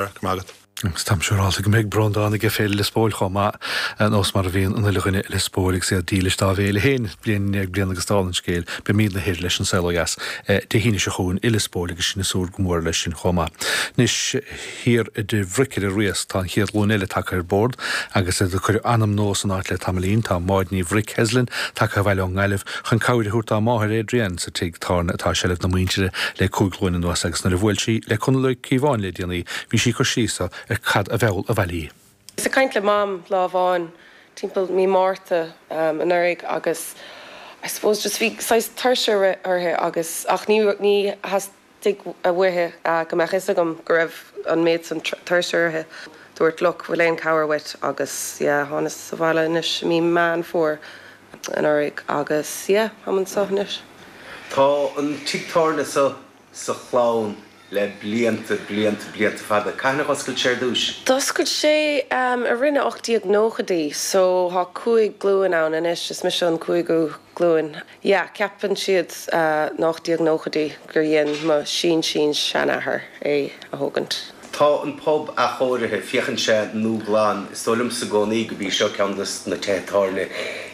Go raibh maith agat. Agus táim siúráilte go mbeidh Breandán aige Féile Lios Póil chomh maith, ar nós mar a bhíonn an uile dhuine i Lios Póil agus iad dílis dá bhféile féin. Bliain i ndiaidh bliana agus dála an scéil, beimidne thoir leis An Saol Ó Dheas Dé hAoine seo chugainn i Lios Póil agus sinne súil go mór leis sin chomh maith. Anois thiar i dTigh Bhric ar an Riasc tá an chéad ghlúin eile tagtha ar bord agus iad ag cur anam nua san áit le tamaillín. Tá Máid Ní Bhric, Heslin, tagtha abhaile ón nGaillimh chun cabhair a thabhairt dá máthair, Adrienne, sa tigh. tábhairne atá i seilbh na muintire le cúig ghlúin anuas agus nuair a bhuail sí le Conall Ó Cíobháin le déanaí bhí sí ag cur síos ar cad a mheall abhaile í. Bhíos ag caint le Mam lá amháin timpeall mí Márta anuraidh agus I suppose just bhí saghas tuirse uirthi agus ach ní ní theastaigh uaithi go mbeadh fhios agam go raibh an méid san tuirse uirthi. Dúrt look bhfuil aon cabhair uait agus yeah thánas abhaile anois i mí Meán Fómhair. anuraidh agus yeah, táim anseo anois. Tá an tigh tábhairne seo sa chlann le blianta, blianta, blianta fada. Cathain a dh'oscail sé ar dtúis? D'oscail sé um, i rith na 1890idí so thá cúig glúin ann anois, is mise an cúigiú glúin. Yeah, ceapann siad uh na 1890idí gur dhein mo shín-shín-seanathair é a thógaint. Tá an pub athchóirithe, féachann sé nua glan. Is dóigh liomsa i gcónaí go b'é seo ceann de na tithe tábhairne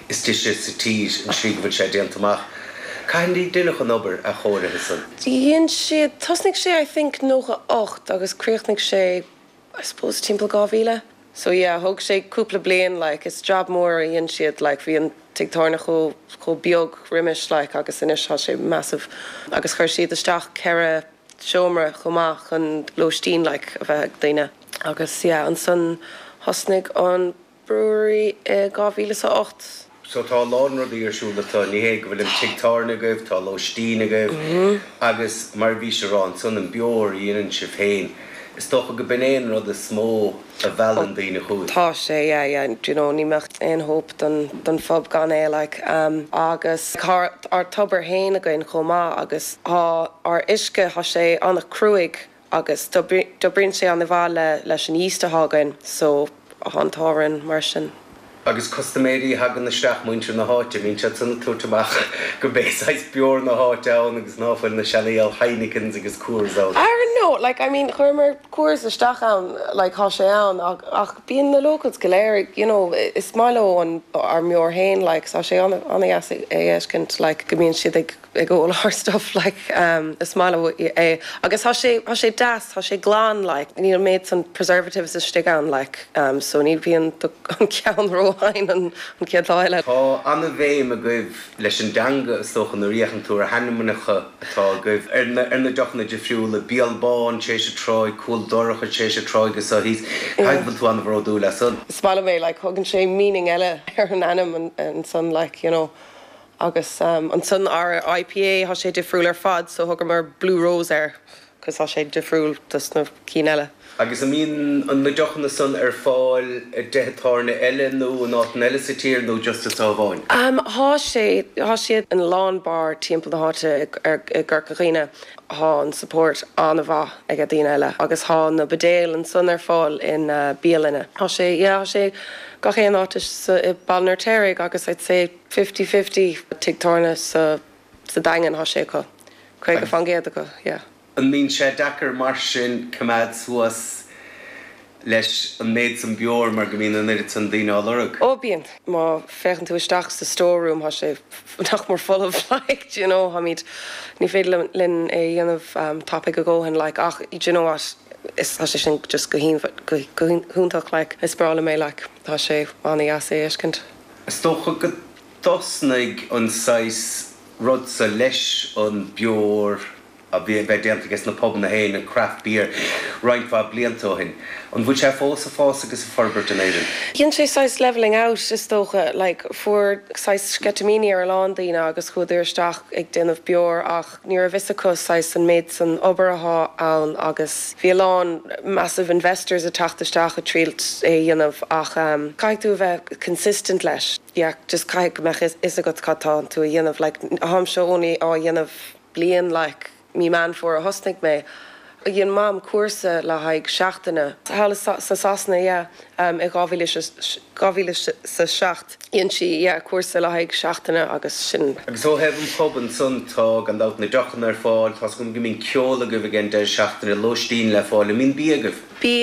is deise sa tír, an slí go bhfuil sé déanta amach. Cathain a deineadh an obair athchóirithe san. Dhein siad, tosnaigh sé I think nócha ocht agus críochnaigh sé I suppose timpeall dhá mhíle. So yeah, thóg sé cúpla bliain like, is job mór a dhein siad like, bhí an tigh tábhairne chomh, chomh beag roimis like agus anois tá sé massive agus chuir siad isteach ceithre, seomra chomh maith chun lóistín like a bheith ag daoine. Agus yeah ansan thosnaigh an brewery i 2008. So tá a lán rudaí ar siúl anseo, ní hé go bhfuil an tigh tábhairne agaibh, tá lóistín agaibh agus mar a bhís ag rá ansan an beoir a dhéanann sibh féin, is dócha go b'in é an rud is mó. a mheallann daoine chugainn. Tá sé, yeah, yeah, do you know, ní mbeadh aon hope don, don phub gan é, like, um, agus tá ár tobar fhéin againn chomh maith agus tá ár uisce, tá sé an-chruaidh agus d'oibríonn sé an-mhaith le, leis an yeast atá againn, so, tá an t-ádh orainn mar sin. Agus custaiméirí a thagann isteach, muintir na háite, an mbíonn siad san ag tabhairt amach go b'é saghas beoir na háite ann agus ná fuil na seanfhial Heinekens agus Coors ann. I don't know, like, I mean, chuireamar Coors isteach ann, like, tá sé ann ach, ach bíonn na locals go léir ag, you know, is maith leo an, ár mbeoir fhéin, like, tá sé an-deas a fheiscint, like, go mbíonn siad ag, ag ól ár stuff like is maith leo é agus thá sé thá sé deas thá sé glan like níl an méid san preservatives istigh ann like so ní bhíonn an ceann ró-thinn an chéad lá eile. Tá an-bhéim agaibh leis an dteanga is dócha nuair a fhéachann tú ar hainmneacha atá agaibh ar na ar na deochanna difriúla, Béal Bán tar éis an tráigh, Cúl Dorcha tar éis an tráigh agus so. Caithfidh go bhfuil tú an-bhródúil as san. Is maith liom é like thugann sé meaning eile ar an ainm ansan like you know Agus ansan ár IPA, thá sé difriúil ar fad, so thugamar Blue Rose air, cos thá sé difriúil dos na cinn eile. Agus an mbíonn an na deochanna san ar fáil i dtithe tábhairne eile nó in áiteanna eile sa tír nó just anso amháin? Thá sé, thá siad in a lán beáir timpeall na háite i gCorca Dhuibhne. Thá an support an-mhaith aige daoine agus thá na buidéil ansan ar fáil in bialainne. Thá sé, yeah, thá sé gach aon áit sa Bhaile an Fheirtéaraigh agus I'd say. fifty fifty tigh tábhairne sa sa Daingean thá sé acu. Caoga fan gcéad acu, yeah. An mbíonn sé deacair mar sin coimeád suas leis an méid san beoir mar go mbíonn an oiread san daoine á lorg? Ó bíonn. Má féachann tú isteach sa store room thá sé nach mór folamh like d'you know tháimíd ní féidir linn é a dhéanamh tapaidh a dhóthain like ach d'you know what is thá sé sin just go go hiontach like is breá liom é like thá sé ana dheas é a fheiscint. Is dócha go dtosnaigh an saghas rud so leis an beoir a bheith déanta ages na pubanna féin, an craft beer, roinnt mhaith blianta ó shin. An bhfuil sé fós ag fás agus ag forbairt in Éirinn? Dhein sé saghas levelling out is dócha, like, fuair saghas sceitimíní ar a lán daoine agus chuadar isteach ag déanamh beoir ach, Ní raibh fhios acu saghas an méid san obair athá ann agus bhí a lán massive investors ag teacht isteach ag triall é a dhéanamh ach caithfidh tú a bheith consistent leis. Yeah, just caithfidh go mbeadh fhios agat cad tá tú a dhéanamh. Like, atháimse only á dhéanamh bliain like, mí Meán Fómhair a thosnaigh mé Dhein Mam cúrsa le haghaidh seachtaine thall i Sasana yeah in 2007. Dhein sí yeah cúrsa le haghaidh seachtaine agus sin. Agus ó thaobh an pub ansan, tá gan dabht na deochanna ar fáil, tá's agam go mbíonn ceol agaibh ag an deireadh seachtaine, lóistín le fáil, an mbíonn bia agaibh?